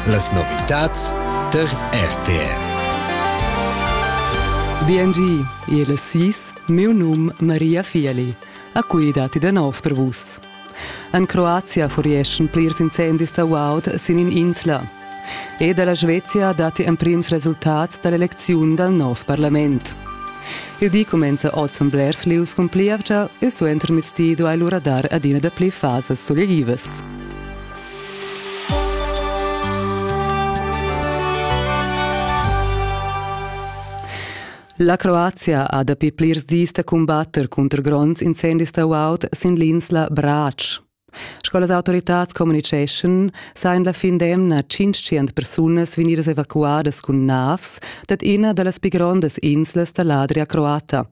Las novitads tar RTR. BNG, il sis, miu num Maria Fieli. A cui dati da nov per vus. En Croazia furieschan plirs incendis da guaud sin in insla. E dalla Svezia dati emprims resultats dall'eleziun dal nov parlament. Il di comenza oz en Blers Lius cun plievgia e suenter mezdi duai lura dar adina da pli fasas soleivas. La Croazia ha dapi plirs dis da cumbatter cunter gronds incendis da guaud sin l'insla Brač. Sco las autoritads communiceschan, sajan la fin d'emna 500 persunas vegnidas evacuadas cun navs dad ina da las pi grondas inslas da l'Adria croata.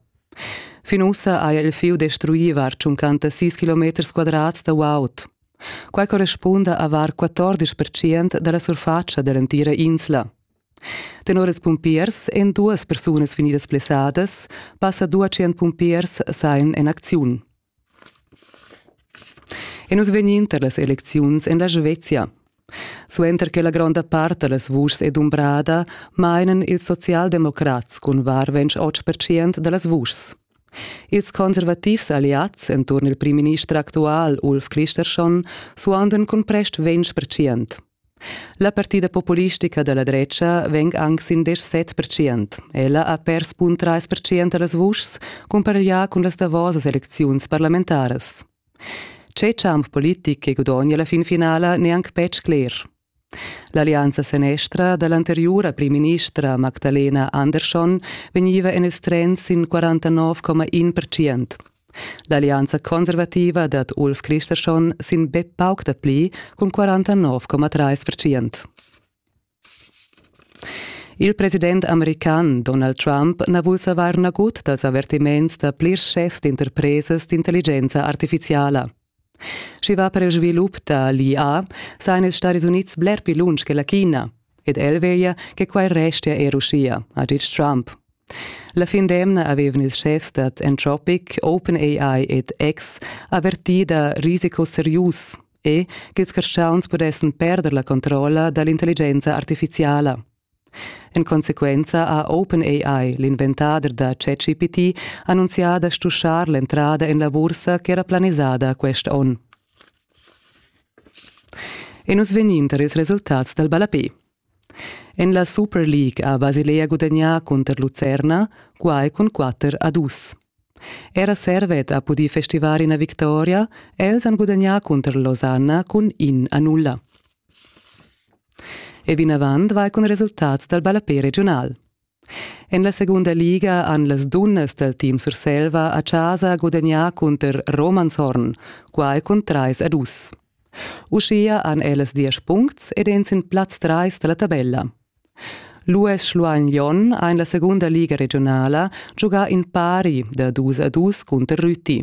Fin ussa haja il fieu destruì var 56 km quadrats da guaud. Quai correspunda a var 14 percent da la surfatscha da l'entira insla. Tenor ils pumpiers èn duas persunas vegnidas blessadas, passa 200 pumpiers sain en acziun. E nus vegnin tar las elecziuns en la Svezia. Suenter che la gronda part da las vuschs è dumbrada, mainan ils socialdemocrats cun var 28 percent da las vuschs. Ils conservativs alliads enturn il primminister actual Ulf Kristersson suondan cun prest 20 percent. La partida populistica da la dretga vegn anc sin diesch set percent. Ella ha pers bun trais percent da las vuschs, cumpareglià cun las davosas elecziuns parlamentaras. Tge champ politic che gudogna la fin finala n'è anc betg cler. L'allianza senestra da l'anteriura primministra Magdalena Andersson vegniva en il trend sin 49,1 percent. L'allianza conservativa dad Ulf Christersson sin be pauc dapli cun 49,3%. Il president american Donald Trump na vul savair nagut dals avertiments da plirs schefs d'interpresas d'intelligenza artifiziala. Sch'i va per il svilup da l'IA, sajan ils Stadis Unids bler pli lunsch che la China. Ed el veglia che quai restia er uschia, ha ditg Trump. La fin d'emna avevan ils schefs dad Anthropic, OpenAI ed X avertì da risicos serius e ch'ils carstgauns pudessan perder la controlla da l'intelligenza artifiziala. En consequenza ha OpenAI, l'inventader da ChatGPT, annunzià da stuschar l'entrada en la bursa ch'era planisada quest onn. E nus vegnin tar ils resultats dal ballapé. En la Super League ha Basilea gudagnà cunter Lucerna, quai cun 4 a 2. Era Servet ha pudì festivar ina victoria, els han gudagnà cunter Losanna cun in a nulla. E vinavant va cun resultats dal ballapè regiunal. En la segunda liga han las dunnas dal team Surselva a chasa gudagnà cunter Romanshorn, quai cun trais a dus. Uschia han ellas diesch puncts ed èn sin plaz trais da la tabella. L'US Schluein Jon ha en la segunda liga regionala giugà in pari da dus a dus cunter Rüti.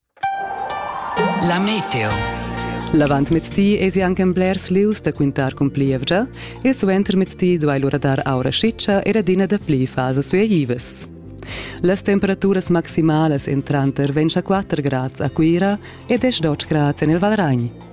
La meteo. L'avantmezdi esi anche en blers lius da quintar cun plievgia e suentermezdi duai lura dar aura schitscha ed adina dapli fasas suaivas. Las temperaturas maximalas en tranter 24 grads a Cuira e 10 grads en il Valragn.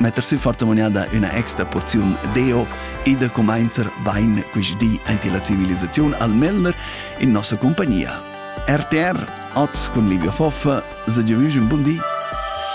metter sü fortamuniada üna extra porziun deo e da cumainzer bain quist di aint la civilisaziun al Melner in nossa compagnia. RTR, oz cun Livia Foffa, se giavüsch un bun di!